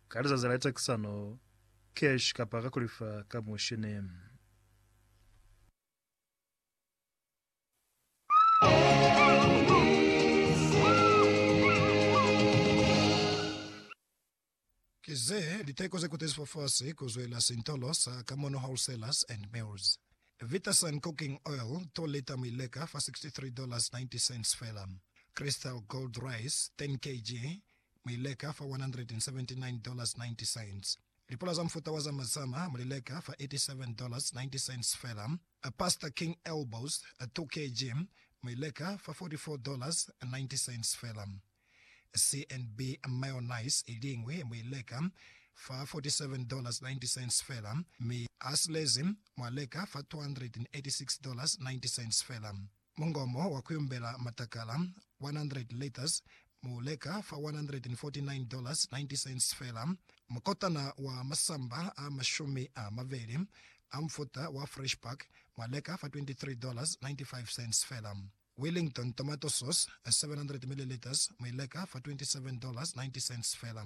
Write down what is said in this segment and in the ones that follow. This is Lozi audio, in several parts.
Ka lizazi la litakisano, cash kapa ka kulifa ka mushini. Ki ze liteko ze kutezi fafasi ku zwela sintolo sa Kamono Wholesalers and Mills. Vitasun Cooking Oil, 2 lita mi leka fa 63 dollars 90 cents fela. Crystal Gold Rice, 10 kg, mu li leka fa $179.90. Lipula za mufuta wa zama zama mu li leka fa $87.90 fela. Pastor King Elbows, 2 kg, mu i leka fa $44.90 fela. CNB mayonnaise i liñwi mu i leka fa $47.90 fela, mi a silezi mwa leka fa $286.90 fela. Mungomo wa kuyumbela matakala, 100 liters, mu leka fa $149.90 fela. Mukotana wa masamba a mashumi a mabeli a mufuta wa Fresh Pack mwa leka fa $23.95 fela. Wellington tomato sauce, 700 milliliters, mu i leka fa $27.90 fela.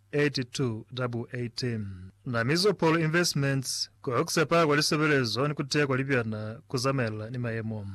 8218 Na Mizopol Investments, Ku Sepa kwa Lisebelezo ni Ku Teya kwa Libyana ku Zamaelana ni Mayemo.